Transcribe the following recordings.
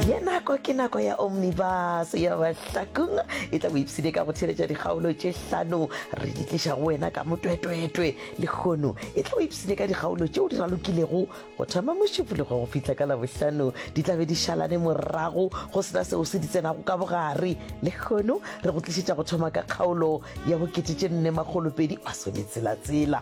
ye nako ke nako ya omnibus ya bahlakong e tla boipsine ka go theletša dikgaolo tše hlano re di tliša go wena ka motwetwetwe lekgono e tla boipsine ka dikgaolo tšeo di ralokilego go thoma mošupologo go fihla ka labohlano di tlabe di šalane morago go sena seo se di tsenago ka bogare lekgono re go tlišetša go thoma ka kgaolo ya bokete tše nne magolopedi masometselatsela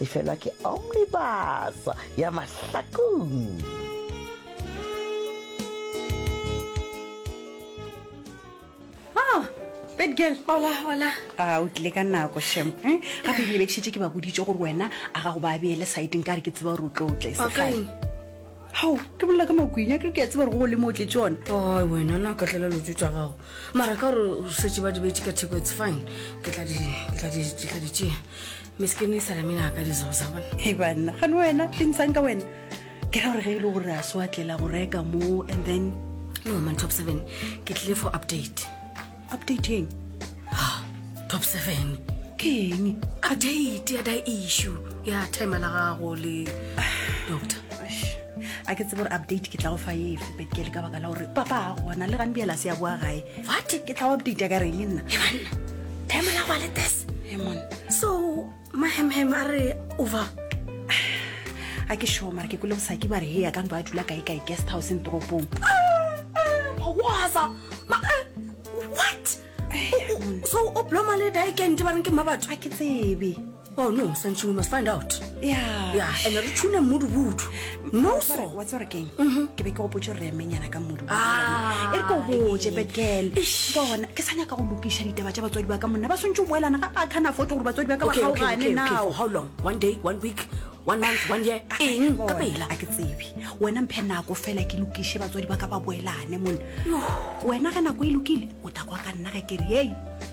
Efelwa ke omnibus ya mahlakong. Abigail. Hola, hola. A o tlile ka nako shem. Eh? Gape ke lebekšitše ke ba boditše gore wena a ga go ba beele saeteng ka re ke tseba gore o tlo tle segale. Hao, ke bolela ka makwenya ke ke a tseba gore go le mo o tletse one. Oh, wena na ka tlela lotso tsa gago. Mara ka gore o setse ba dibetse ka theko it's fine. Ke tla di ke tla di ke tla di tšea. Miskini e sala mina ka dizo za bona. Hey bana, gane wena, ke ntshang ka wena. Ke ra gore ge e le gore a so atlela go reka mo and then no man top 7 ke tlile for update. Update eng? Ah, top 7. Ke eng? Update ya da issue ya time la gago le doctor. a ke tsebe gore update ke tla go fa efe but ke le ka baka la gore papa a gona le gane bjela se ya boa gae what ke tla go update ya ka reng le nna emanna time la gwa le tes emon so mahemhem a re over a ke sure mara ke kole bosaki ba re he ya ka ntlo a dula kae kae guest house in toropong waza what so o bloma le dikente ba reng ke mma batho a ke tsebe Oh no, Sanchi, we must find out. Yeah. Yeah, and re tshune mmudu butu. No so. Wa tsore keng? Mhm. Ke be ke go potse re menyana ka mmudu. Ah. E re go botse bekel. Bona, ke sanya ka go lokisha ditaba tsa batswadi ba ka monna. Ba swantse go elana ka kana foto gore batswadi ba ka ba ga o gane now. How long? One day, one week? one month one year ah, eng ka pela a ke tsebe wena mphe nako fela ke lokishe batswadi ba ka ba boelane mone wena ge nako e lokile o takwa ka nna ge ke re ei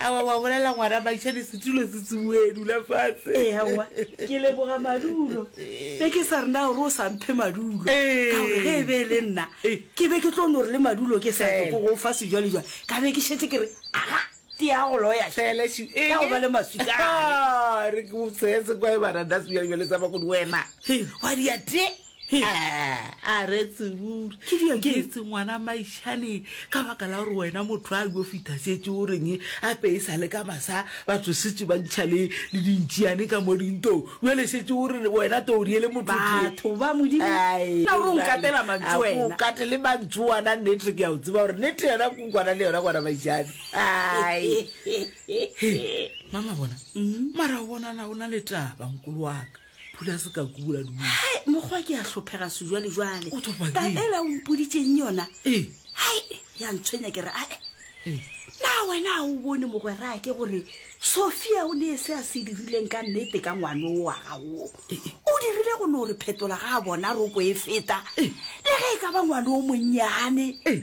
awa wa bolela ngwana makšane setulo se tsuboe dula fatshe ee awa ke leboga madulo be ke sa rena gore o sa mphe madulo ka gore ge e be e le nna ke be ke tlo no re le madulo ke sa ke go fa sejwale jwale ka be ke šetse ke re aga te ya go loya felešo e ya go ba le maswika re ke o tshetse kwa e bana da sejwale jwale sa ba go di wena wa dia te He, a re tsebure Ke dilo ke tse. etse ngwana maishane ka baka la gore wena motho a yo fita setse o reng a pe e sa le ka masa batho setse ba ntšha le le dintšiane ka mo dintong jale setse o re wena to o riele motho tee. Batho ba modimo Ai, na o re o nkatela mantšu a ko o wena kate le mantšu wana nnete ke a o tseba gore nnete yona ko kwana le yona kwana maishane ai He, mama bona mara o bonala o na le taba nkolo waka phula se ka kula du hai mokgwa ke ya hlophega se jwale jwale O thopa ka ke? ela o mpoditseng yona ee hai ya ntshwenya ke re ae ee na wena ga o bone mogwera ke gore sophia o ne se a se dirileng ka nnete ka ngwane o wa gago o dirile go no re phetola ga a bona roko e feta le ge e ka ba ngwane o monnyane ee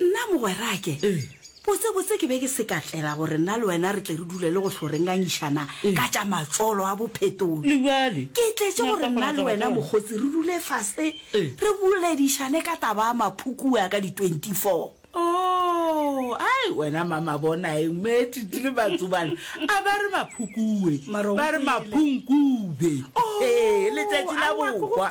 Nna mogwerake, botsebotse ke be ke se ka tlela gore nna le wena re tle re dule le go hlo re ngangišana ka tša matsolo a bophetolo. Ke tletše gore nna le wena mokgotsi re dule fase re boledišane ka taba a maphukua ka di 24. Oh, ai, wena mama bonaeng, Meetiti le Matsubane a ba re maphukue, ba re maphunkube. Oh, ee, letšatši la bohwa.